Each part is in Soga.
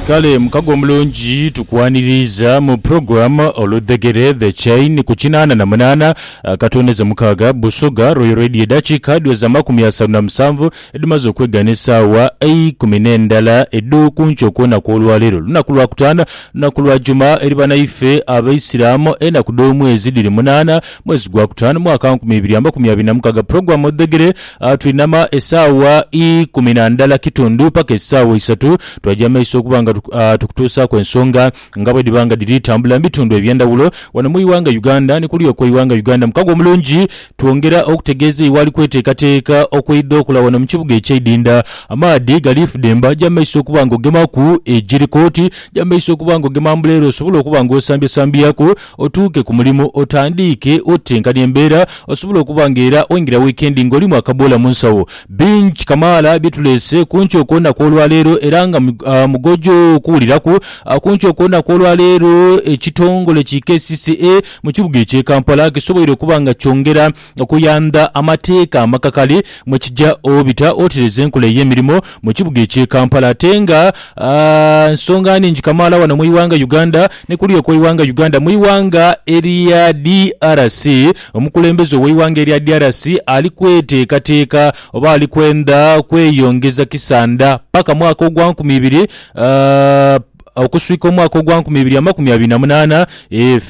Kale mukago omulungi tukwaniriiza mu program Oludhegere The Chain ku kinaana na munaana akatondeze mukaaga Busoga Royal Radio edhakiika dhiweze amakumi asanu na musanvu edhimaze okwegana esaawa eikumi n'endala edho kunkyo kwona kw'olwaleero lunaku lwa kutaano lunaku lwa juma eri banaife abaisiramu enaku dh'omwezi dhiri munaana mwezi gwa kutaano mwaka nkumi ibiri amakumi abiri na mukaaga program Oludhegere Twinama esaawa ikumi na ndala kitundu paka esaawa isatu, twaja mu maiso okuba nga tukutuusaaku ensonga nga bwedhiba nga dhiri tambula mu bitundu eby'endhawulo wano mu ighanga Uganda. Ni kuluya kwa ighanga Uganda mu kago omulungi, twongera okutegeeza eighali kweteekateeka okweidha okola wano mu kibuga eky'eidinda. Amaadhi gali fudemba, ja mu maiso okuba nga ogemaku egiri koti, ja mu maiso okuba nga ogema mbuleere osobole okuba nga osambyasambyaku. otuuke ku mulimu otandiike otenkanya embeera osobole okuba nga era oingira wiikendi ng'olimu akaboola mu nsawo. Bingi kamaala bye tuleese ku nkyo kw'olunaku olwaleero era nga mugoja okuwuliraku. Ku nkyo kw'olunaku olwaleero ekitongole ki kcca mu kibuga eky'e Kampala kisoboire okuba nga kyongera okuyandha amateeka amakakali mwe kija obita otereze enkola ey'emirimo mu kibuga eky'e Kampala ate nga nsonga nhingi kamaala wano mu ighanga Uganda ni kuluya okw'eighanga Uganda mu ighanga erya DRC Omukulembeze ow'eighanga erya DRC ali kweteekateeka oba ali kwenda kweyongeza kisanda paka mwaka ogwa nkumi ibiri okuswika omwaka ogwa nkumi ibiri amakumi abiri na munaana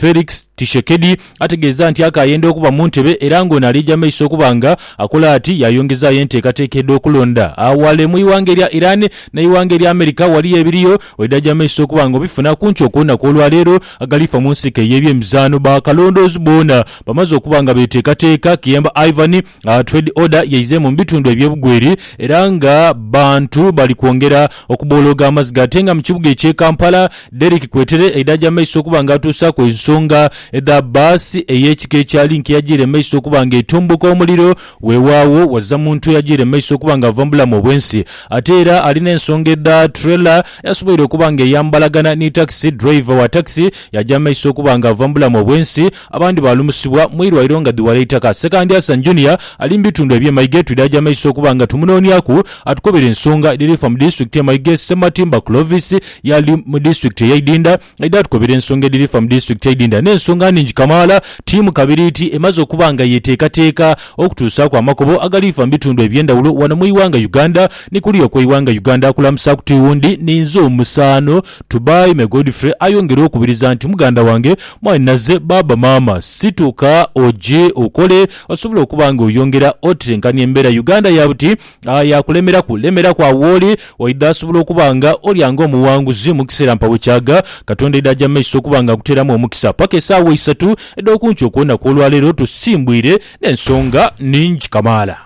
Felix Tshishekedi Ategeeza nti akaayenda okuba mu ntebe era ng'ono aliija mu maiso okuba nga akola ati yaayongezaayo enteekateeka edh'okulonda aghalala e mu ighanga erya Iran n'eighanga erya America waliyo ebiriyo waidhaja mu maiso okuba nga obifuna ku nkyo kw'onaku olwaleero agalifa mu nsiko ey'ebyemizaano. Bakalondoozi boona bamaze okuba nga beeteekateeka, Kiyemba Ivan, Trade order yaize mu bitundu ebye Bugweri era nga bantu bali kwongera okubolooga amaziga ate nga mu kibuga ekye Kampala, Derrick Kwetere aidhaja maiso okuba nga atuusaaku ensonga edha bus eye kika ekya Link eyajiire maiso okuba nga etumbuka omuliro wewaagho waza muntu eyajiire maiso okuba nga ava mu bulamu obwensi ate era ali ne nsonga edha trailer eyasoboire okuba nga eyambalagana ni taxi, driver wa taxi yaja maiso okuba nga ava mu bulamu obwensi. Abandi baalumusibwa mu irwaire nga dhi wala eitaka. Sekandi Hassan Junior ali mu bitundu eby'e Maige twidaaja amaiso okuba nga tumunooniaku atukobere ensonga edhiri fa mu disitulikiti y'e Maige. Ssematimba Clovis yaali mu disitulikiti eye Idinda aidha atukobere ensonga edhiri fa mu disitulikiti y'e Idinda n'ensonga nhingi kamaala. Ttiimu kabiriiti emaze okuba nga yeteekateeka okutuusaaku amakubo agali fa mu bitundu eby'endhawulo wano mu ighanga Uganda ni kuluya okw'eighanga Uganda. Akulamusaaku tiwundi ni nze omusaano Tubaime Godfrey ayongera okubiriza nti muganda wange Mwaine aze baaba maama situka oje okole osobole okuba nga oyongera otetenkania embeera Uganda ya buti aah yakulemeraku lemeraku agho wooli oidha asobola okuba nga olya nga omuwanguzi mukiseera mpagho kyaga Katonda aidha aja mumaiso okuba nga akuteeramu omukisa paka esaawa isatu edhokunkyo okwoonaku olwaleero tusimbwire nensonga ningi kamaala.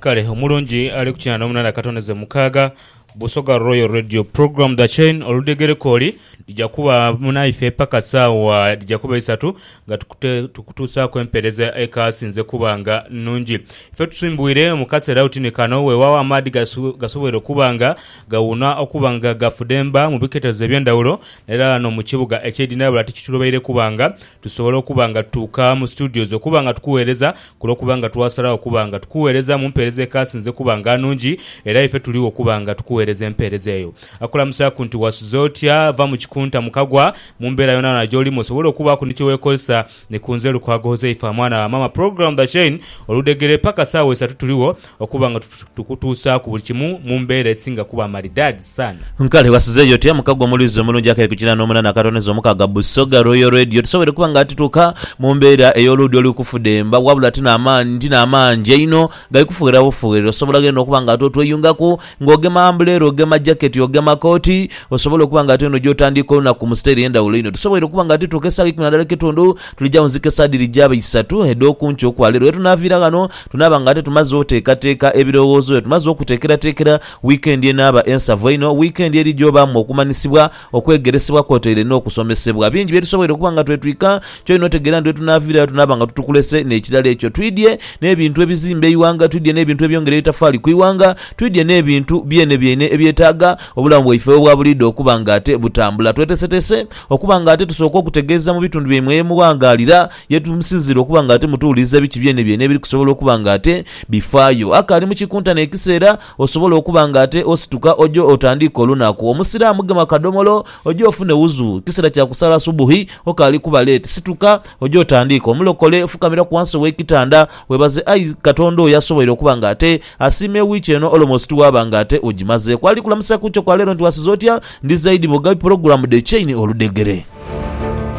Kale omulungi ali ku kinana omunana katoneze mukaaga Busoga Royal Radio program The Chain oludegereko oli lija kuba naife paka saawa dhija kuba isatu nga tukute- tukutuusaaku empeereza ekasinze kuba nga nnungi. Ife tusimbwire mu kaseera oti ni kano weewaawo amaadhi gaso- gasoboire okuba nga gawuuna okuba nga gafudemba mu biketezo eby'endhawulo era no mu kibuga eky'Edina wabula tikitulobaire kuba nga Tusobola okuba nga tutuuka mu studios okuba nga tukugheereza ku lw'okuba nga twasalagho okuba nga tukugheereza mu mpeereza ekaasinze okuba nga nnungi, era ife tuligho okuba nga tukugheereza empeereza eyo. Akulamusaaku nti, Wasuze otya? Va mu kikunta mu kagwa. Mu mbeera yoonayoona gy'olimu osobole okubaaku ni kye weekozesa. Ni ku nze Lukwago Huzaifa, mwana wa maama. Program The Chain, oludhegere paka saawa isatu tuligho. Okuba nga tukutuusaaku buli kimu mu mbeera esinga kuba maridaadi saana. Kale ghasizeeyo otya mukago omulwiza omulungi akali ku kinaana omuna n'akatoniza omukaaga? Busoga Royal Radio tusobweire okuba nga tituuka mu mbeera ey'oluudi oli kufudemba wabula ti n'amaangi einho gali kufugherera bufugherere. Osobola ghene okuba nga ate otweyungaku ng'ogema ambuleera, ogema jaketi, ogema kooti osobole okuba nga ate eno gy'otandiika olunaku mu sitayiro ey'endhawulo einho. Tusobweire okuba nga tituuka esaawa ikumi na ndhala n'ekitundu, tulija wunzika esaawa dhiri gyaba isatu edh'oku nkya okwa leero. Ye tunaaviira ghano. Tunaaba ng'ate tumaze oteekateeka ebirowoozo byo. Tumaze okuteekerateekera wiikendi enaaba ensavu einho, wiikendi eri gy'obaamu okumanyisibwa, okwegeresebwa kwotaire n'okusomesebwa. Bingi bye tusoboire okuba nga twetwika, ky'olina otegeera nti bwetunaaviirayo tunaaba nga tutukulese n'ekirala ekyo. Twidhie n'ebintu ebizimba eighanga, twidhie n'ebintu ebyongera eitafaali ku ighanga, twidhie n'ebintu byenebyeine ebyetaaga obulamu bwaife obwa buliidho okuba ng'ate butambula. Tweteeseteese okuba ng'ate tusooka okutegeeza mu bitundu byaimwe ye mughangaalira. Ye tumusinziire okuba nga ate mutuwuliriza biki byenebyeene ebiri kusobola okuba nga ate bifaayo. Akaali mu kikuntane ekiseera, osobola okuba nga ate osituka oje otandiike olunaku. Omusiraamu gema akadomolo oje ofune wuzu. Kiseera kya kusaala subuhi, okaali kuba leeti. Situka oje otandiike. Omulokole, fukamiraku wansi ow'ekitanda, weebaze ayi Katonda oyo asoboire okuba nga ate asiima ewiiki eno olomosi tiwaaba nga ate ogimazeeku. Ali kulamusa ku kyo kwa leero nti wasiza otya? Ndi zaidi bwoga bi pulogulaamu dhe chain oludhegere.